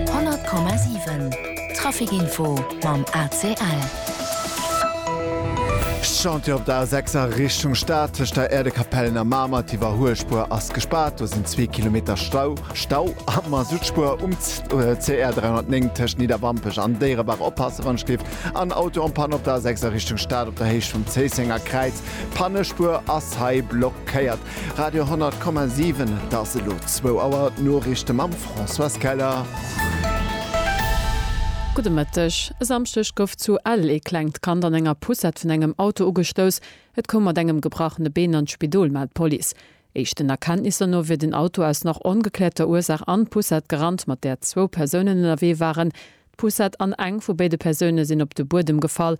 100,7 Trafic info mam ACL. Chantier op der A 6 a Richtung Stad, tëscht der Äerdekapellen a Mamer. D'Iwwerhuelspuer ass gespaart, do sinn zwee Kilometer Stau. Stau am Masuttspuer um CR 309 tëscht Nidderwampech an Déierebaach. Oppasse wann et schléift. En Auto en Panne op der A 6 a Richtung Stad op der Héicht vum Zéissenger Kräiz. Pannespuer ass hei blockéiert. Radio 10,7 Et ass elo zwou Auer. D'Noriichte mam Françoise Keller. Gudde Mëtteg. E Samschdeg gouf zu Ell ee klengt Kand an enger Poussette vun engem Auto ugestouss. Et koum mat engem gebrachene Been an d'Spidol, mellt d'Police. Éischten Erkenntnisser no wier den Auto aus nach ongekläerter Ursaach an d'Poussette gerannt, mat där zwou Persounen ënnerwee waren. D'Poussette an eng vu béide Persoune sinn op de Buedem gefall.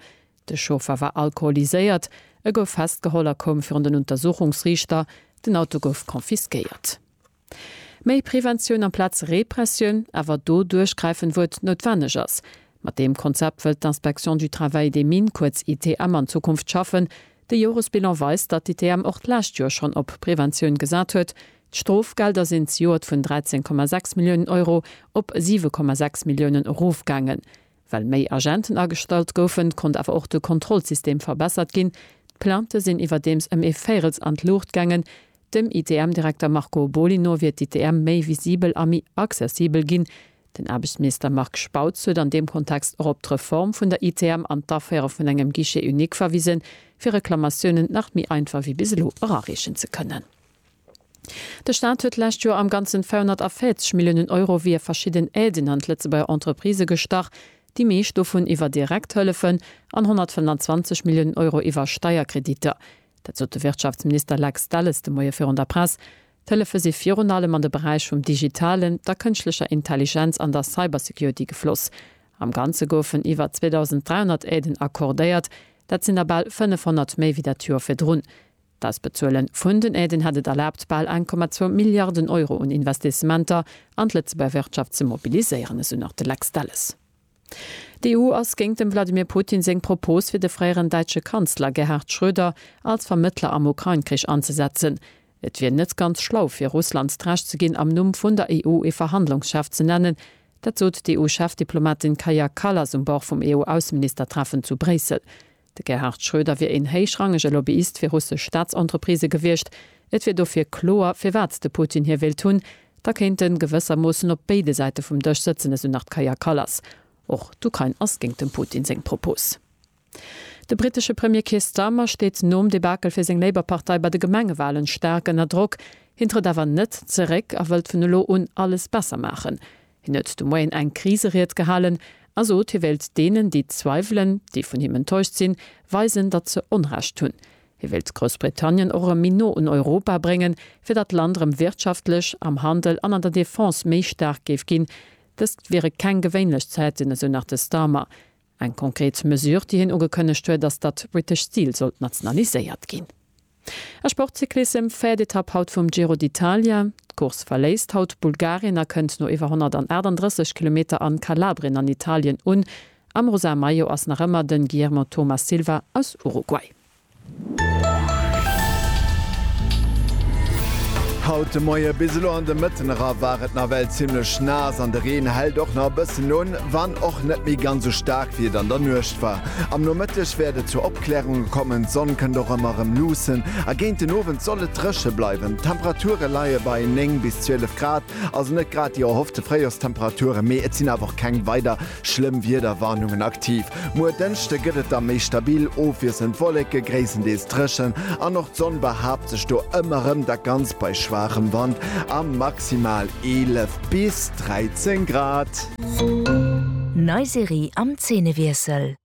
De Chauffer war alkoholiséiert, e gouf festgeholl a koum virun den Untersuchungsriichter. Den Auto gouf confisquéiert. Méi Preventioun amplaz Repressioun, awer do duerchgräifen, wou et noutwenneg ass. Mat deem Konzept wëllt d'Inspection du Travail des Mines, kuerz ITM, an Zukunft schaffen. De Joresbilan weist, datt d'ITM och d'lescht Joer schonn op Preventioun gesat huet. D'Strofgelder sinn zejoert vun 13,6 Milliounen Euro op 7,6 Milliounen erofgaangen. Well méi Agenten agestallt goufen, konnt awer och de Kontrollsystem verbessert ginn. D'Plaintë sinn iwwerdeems ëm ee Véirels an d'Luucht gaangen. Dem ITM-Direkter Marco Boly no wier d'ITM méi visibel a méi accessibel ginn. Den Aarbechtsminister Marc Spautz huet an deem Kontext och op d'Reform vun der ITM an d'Aféiere vun engem Guichet unique verwisen, fir Reklamatiounen nach méi einfach wéi bis elo erareechen ze kënnen. De Staat huet d'lescht Joer am Ganzen 240 Milliounen Euro via verschidden Aiden an d'Lëtzebuerger Entreprisë gestach, déi meescht dovun iwwer direkt Hëllefen an 125 Milliounen Euro iwwer Steierkreditter. Dat sot de Wirtschaftsminister Lex Delles de Moie virun der Press. D'Hëllefe si virun allem an de Beräich vum Digitalen, der Kënschtlecher Intelligenz an der Cybersecurity gefloss. Am Ganze goufen iwwer 2.300 Aiden accordéiert, dat sinn der bal 500 méi wéi dat Joer virdrun. Dass Bezuelen vun den Aiden hätt et erlaabt, bal 1,2 Milliarden Euro un Investissementer an d'Lëtzebuerger Wirtschaft ze mobiliséieren, esou nach de Lex Delles. D'EU ass géint dem Wladimir Putin seng Propos, fir de fréieren däitsche Kanzler Gerhard Schröder als Vermëttler am Ukrain-Krich anzesetzen. Et wier net ganz schlau, fir Russland d'Recht ze ginn, am Numm vun der EU ee Verhandlungschef ze nennen. Dat sot d'EU-Chefdiplomatin Kaja Kallas um Bord vum EU-Ausseministertreffen zu Bréissel. De Gerhard Schröder wier een héichrangege Lobbyist fir russesch Staatsentreprisë gewiescht. Et wier dofir kloer, firwat de Putin hie wéilt hunn. Da kéint en gewëssermoossen op béide Säite vum Dësch sëtzen, esou nach d'Kaja Kallas. Och d'Ukrain ass géint dem Putin seng Propos. De brittesche Premier Keir Starmer steet nom Debakel fir seng Labour-Partei bei de Gemengewalen staark ënner Drock. Hien trëtt awer net zeréck a wëllt vun elo un alles besser maachen. Hien huet de Moien eng Kriseried gehalen a sot, hie wéilt deenen, déi zweiwelen, déi vun him enttäuscht sinn, weisen, datt se Onrecht hunn. Hie wéilt Groussbritannien och erëm méi no un Europa bréngen, fir datt d'Land erëm wirtschaftlech, am Handel an an der Defense méi staark géif ginn. Dëst wiere keng gewéinlech Zäiten, esou nach de Starmer. Eng konkret Mesure, déi hien ugekënnegt huet, ass, datt d'British Steel sollt nationaliséiert ginn. A Sportcyclissem, véiert Etapp haut vum Giro d'Italia. D'Course verléisst haut Bulgarien a kënnt no iwwer 138 Kilometer an Kalabrien an Italien un. Am rosa Maillot ass nach ëmmer den Guillermo Thomas Silva aus Uruguay. Haut de Moie bis elo an de Mëtten era war et nawell zimmlech naass an de Reen hält och nach e bëssen un, wann och net méi ganz sou staark wéi et an der Nuecht war. Am Nomëtteg wäert et zu Opklärunge kommen, d'Sonn kënnt och ëmmer erëm luussen a géint den Owend soll et dréche bleiwen. D'Temperature leie bei 9 bis 12 Grad, also net grad déi erhoffte Fréijorstemperaturen, mee et sinn awer och keng weider Schlëmm Wiederwarnungen aktiv. Muer Dënschde gëtt et da méi stabil, ofwiesselnd Wolleke, gréisstendeels dréchen an och d'Sonn behaapt sech do ëmmer rëm, dat Ganzt bei schwaachem Wand a maximal 11 bis 13 Grad. Nei Serie am Zeenewiessel.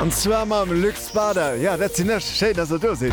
An zwar mam Luc Spader. Jo, dat sinn ech. Schéin, dass der do sidd.